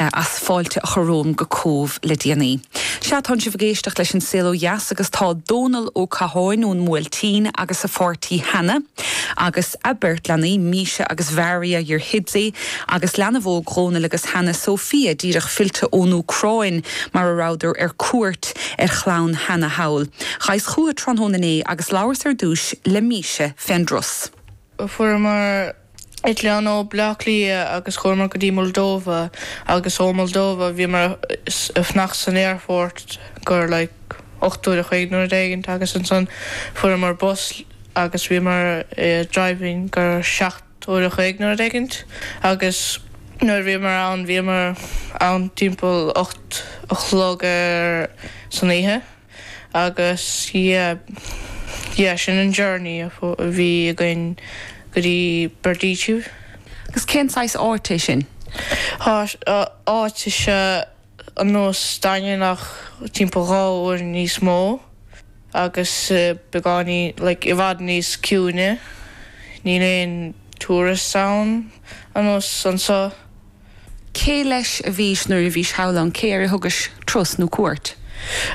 as fáilte a chur romham go Cóbh le déanaí. Sea, tánn sibh ag éisteacht leis An Saol Ó Dheas agus tá Dónall Ó Catháin ón mBuailtín agus a pháirtí Hannah, agus a beirt leanaí, Misha agus Mharia, your hidsi, agus leanbh óg Dhónaill agus Hannah, Sofia, díreach fillte ón Úcráin, mar a rabhadar ar cuairt ar chlann Hannah thall. Ghaibheas chucu tráthnóna inné agus labhras ar dtúis le Misha fén dturas. Fuaireamar eitleán ó Bhleá Cliath agus chuamar go dtí Moldova agus ó Moldova bhíomar ag fanacht san aerfort gur like ocht uair a chloig nó rud éigint agus ansan fuaireamar bus agus bhíomar ag driving gur seacht uair a chloig nó rud éigint agus nuair bhíomar ann bhíomar ann timpeall ocht a chlog ar san oíche. Agus, yeah, yeah, sin an journey a bhí againn go dtí Berdichev. Agus cén saghas áit é sin? Áit is ea ar nós an Daingin ach timpeall dhá uair níos mó agus beagáinín, like, i bhfad níos ciúine. Níl aon tourists ann, ar nós anso. Cé leis a bhís nuair a bhís thall ann? Cé air a thugais turas nó cuairt?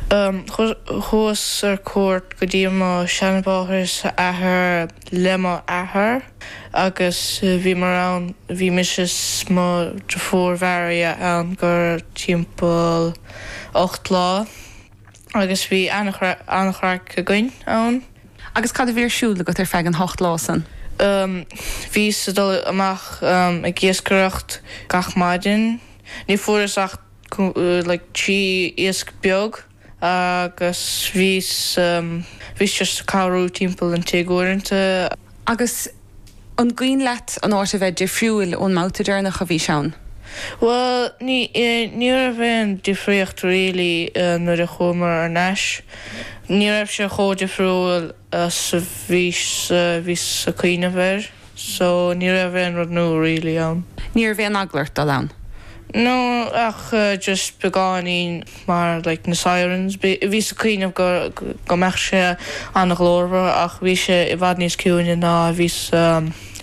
Thugas ar cuairt go dtí mo sheanmháthair is seanathair le mo athair agus bhíomar ann, bhí mise is mo dheirfiúr Mharia ann gur timpeall ocht lá. Agus bhí an-chraic againn ann. Agus cad a bhí ar siúl agat ar feadh an ocht lá san? Bhíos ag dul amach ag iascaireacht gach maidin. Ní fuaireas ach like trí iasc beag agus bhíos just ag cabhrú timpeall an tigh uaireanta. Agus An cuimhin leat an áit a bheith difriúil ón mbabhta deireanach a bhís ann? Bhuel, ní, ní raibh aon difríocht really nuair a chuamar thar n-ais. Ní raibh sé chomh difriúil is a bhís, bhíos a' cuimhneamh air so ní raibh aon rud nua really ann. Ní raibh aon eagla ort dul ann? No, ach just beagáinín. mar like na sirens, bhíos ag cuimhneamh go, go mbeadh sé an-ghlórmhar ach bhí sé i bhfad níos ciúine ná a bhíos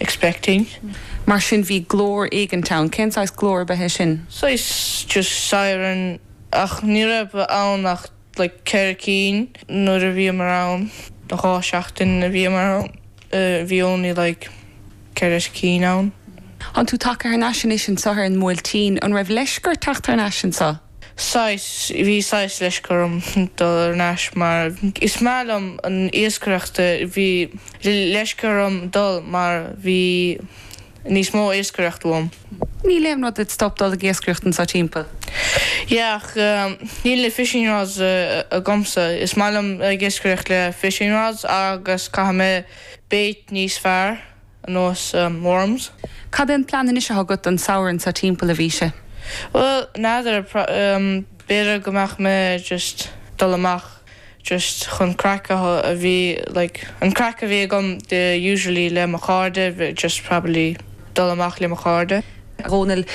expecting. Mar sin bhí glór éigint ann, cén saghas glór a b'ea é sin? Saghas just siren ach ní raibh ann ach like ceithre cinn nuair a bhíomar ann, dhá seachtain a bhíomar ann. Uhh bhí only like ceithre cinn ann. Tánn tú tagtha thar n-ais anois anso ar an mBuailtín? An raibh leisce ort teacht thar n-ais anso? Saghas, bhí saghas leisce orm dul thar n-ais mar is maith liom an iascaireacht. Bhí leisce orm dul mar bhí. níos mó iascaireacht uaim. Níl aon rud id stop dul ag iascaireacht anso timpeall? Yeah, ach níl na fishing rods agamsa. Is maith liom ag iascaireacht le fishing rods agus caithfidh mé bait níos fearr, ar nós worms. Cad é an plean anois athá agat don samhradh anso timpeall, a Mhíse? Bhuel, n'fheadar, b'fhéidir go mbeadh mé just dul amach. just chun craic a bheith like an craic a bheith agam usually le mo chairde just probably dul amach le mo chairde. Dónall,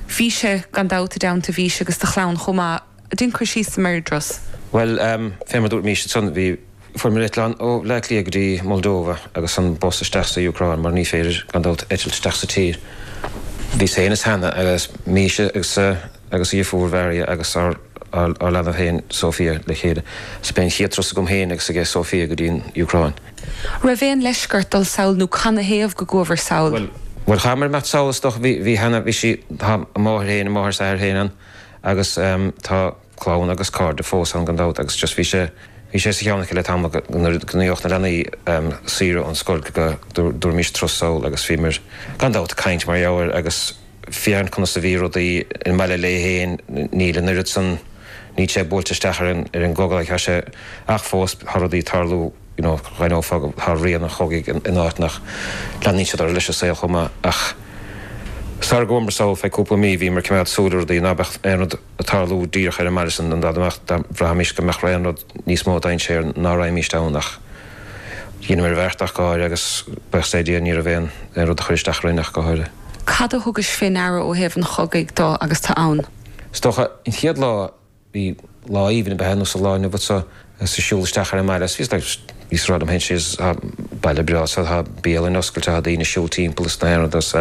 bhís-se gan dabht i dteannta Mhíse agus do chlann chomh maith. Dein cur síos ar bhur dturas. Bhuel, fé mar dúirt Míse ansan, bhí, fuaireamar eitleán ó Bhleá Cliath go dtí Moldova agus an bus isteach sa Úcráin mar ní féidir gan dabht eitilt isteach sa tír. Bhíos féin is Hannah agus Míse agus agus a deirfiúr Mharia agus ár leanbh féin Sofia le chéile. Sea, b'é an chéad turas agam féin agus aige Sofia go dtí an Úcráin. Raibh aon leisce ort dul sall nó canathaobh go gcuabhair sall? Bhuel. Bhuel, chaitheamar imeacht sall is dócha. Bhí, bhí cheana, bhí sí, tá a máthair féin, a máthair is athair féin ann agus tá clann agus cairde fós ann gan dabht agus just bhí sé, bhí sé sa cheann aici le tamall go, nuair a gheobhadh na leanaí saoire ón scoil go, dtabharfaimis turas sall agus bhíomar gan dabht ag caint mar gheall air agus. Féin, conas a bhí rudaí ina baile féin? Níl an oiread san, ná tá sé buailte isteach ar an, ar an gcogadh like tá sé ach fós tá rudaí ag tarlú you know d'aithneofá go, tá rian an chogaidh san áit ach, leanann siad orthu leis an saol chomh maith ach sara gcuamar sall feadh cúpla mí bhíomar ag coimeád súil ar rudaí ná beadh aon rud ag tarlú díreach ar an mbaile san, an dtuigeann tú dá mbeadh, bhraithimís go mbeadh aon rud. níos mó dainséir ná raghaimíst ann ach dheineamar an bheart ach go háirithe agus buíochas le Dia ní raibh aon aon rud a chuir isteach orainn ach go háirithe. Cad a thugais fé ndeara ó thaobh an chogaidh de agus tu ann? Is dócha, an chéad lá, bhí lá aoibhinn a bheadh ar nós an lá inniu ann so agus tú siúl isteach ar an mbaile agus bhí like bhíos ag rá liom fhéin is thá baile breá so thá bialann oscailte thá daoine siúl timpeall is na aon rud agus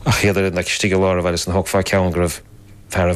ach iad ar fhad like istigh i lár an bhaile so thógfá ceann go raibh fear a